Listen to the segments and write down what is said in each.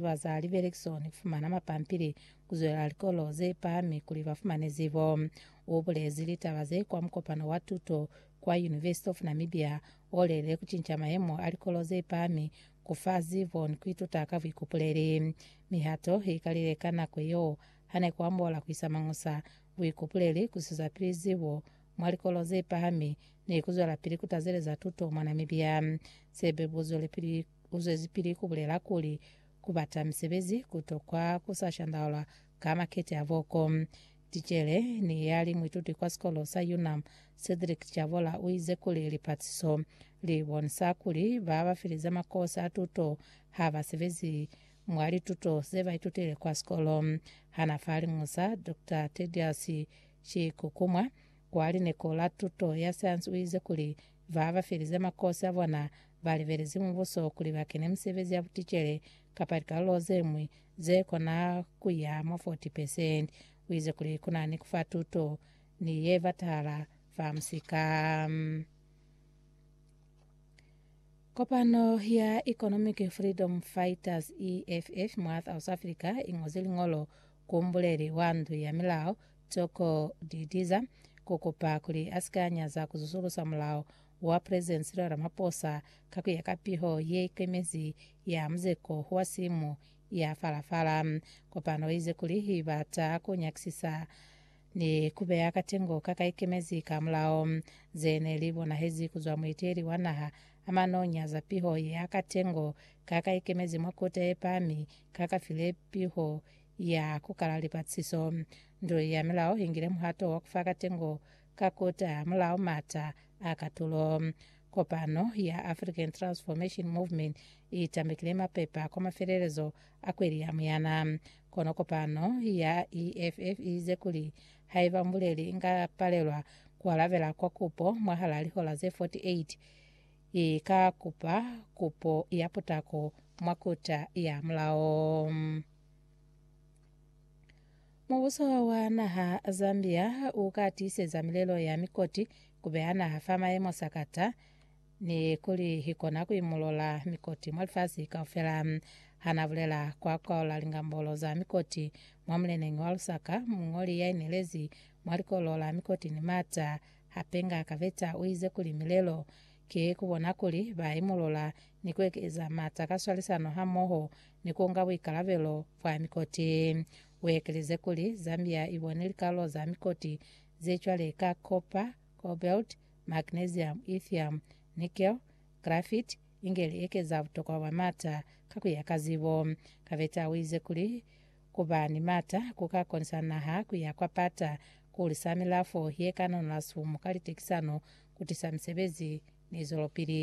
ba za libelekisoni ku fumana mapampili ku zwelela likolo ze pahami kuli ba fumane zibo. U bulezi litaba ze kwa mukopano wa tuto kwa University of Namibia o lelele ku cinca mayemo a likolo ze pahami ku fa zibo ni ku ituta ka buikupuleli. Mihato i kalile ka nako yeo ha ne ku ambola ku isa mañusa, buikupuleli, ku sizapili zibo mwa likolo ze pahami ni ku zwelapili ku tazeleza tuto mwa Namibia. Se be bu zwelipili Uzwezipili kubulela kuli, Kubata misebezi kutokwa kusashandaulwa ka makete a voko. Ticele ni yali muituti kwa sikolo sa UNAM, Cedric Chabola uize kuli lipatiso libonisa kuli babafelize makosi a tuto habasebezi mwa lituto zebaitutile kwa sikolo. Hana fa Liñusa, Doctor Tedious Chikukumwa wa lineko la tuto ya sayansi uize kuli babafelize makosi abona ba libelezi mubuso kuli ba kene misebezi ya buticele kapa likalolo ze ñwi ze kona ku ya mwa 40 pesenti. U ize kuli ku na ni ku fa tuto ni ye batahala fa musika. Kopano ya Economic Freedom Fighters, EFF, mwa South Africa i ñozi liñolo ku mbuleli wa ndu ya milao Toko Didiza ku kupa kuli a si ka nyaza ku zusulusa mulao wa President Cyril Ramaphosa ka kuya ka piho ye ikemezi ya muzeko wa simu ya fala-fala. Kopano ize kuli ibata ku nyakisisa ni kubeya katengo ka ka ikemezi ka mulao, ze ne li bonahezi kuzwa mueteli wa naha a manonya za piho ya katengo ka ka ikemezi mwa Kota ye Pahami ka ka file piho ya kukala lipatlisiso. Ndu ya milao ingile muhato wa kufa katengo Ka kota mulao mata a katulo, kopano ya African Transformation Movement i tambekile mapepa kwa mafelelezo a kweli ya Muyana. Kono kopano ya EFF i ize kuli haiba mbuleli inga palelwa ku alabela kwa kupo mwahal'a lihola ze 48, i ka kupa kupo ya putako mwa kota ya mulao. Mubuso wa naha Zambia u ka tiiseza milelo ya mikoti ku beha naha fa maemo sakata ni kuli hi kona ku imulola mikoti mwa lifasi kaufela. Hana bulela kwa kwaola lingambolo za mikoti mwa muleneñi wa Lusaka, mungoli ya inelezi mwa likolo la mikoti ni mata, Hapenga Kaveta u ize kuli milelo ki ku bona kuli ba imulola ni ku ekeza mata ka swalisano hamoho ni ku nga buikalabelo bwa mikoti. U ekelize kuli, Zambia i bone likalo za mikoti ze cwale ka copper, cobalt, magnesium, lithium, nickel, graphite, inge li ekeza butokwa bwa maata ka ku ya ka zibo. Kabeta u ize kuli, Ku ba ni maata ku ka konisa naha ku ya kwa pata, ku hulisa milafo ye ka nonola sifumu ka litekisano, ku tisa misebezi ni zwelopili.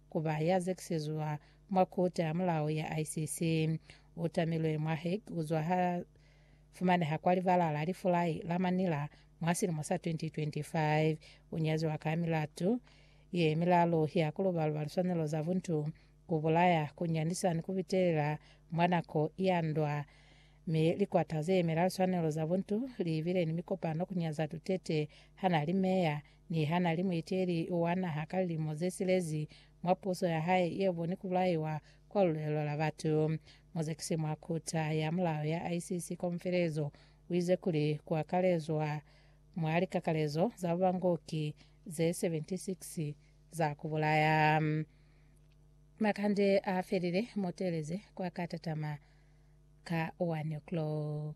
ku ba ya zekisezwa mwa Kota ya Mulao ya ICC. U tamilwe mwa Hague ku zwa ha fumaneha kwa libala la lifulai la Manila mwa silimo sa 2025. U nyaziwa ka milatu ye milalu ya ku luba-luba liswanelo za buntu, ku bulaya, ku nyandisa ni ku bitelela mwa nako ya ndwa. Mi likwata ze yemela liswanelo za buntu li bile ni mikopano ku nyaza Duterte ha na li meya Niha nali muiteli wa naha ka lilimo ze silezi mwa puso ya hae ye boni ku bulaiwa kwa lulelo la batu, muzekisi mwa Kuta ya Mulao ya ICC Komfelezo uize kuli kuakalezwa mwa likakalezo za bubangoki ze 76 za kubulaya. Makande a felile, mutelezi kwa ka tatama ka 1 o'clock.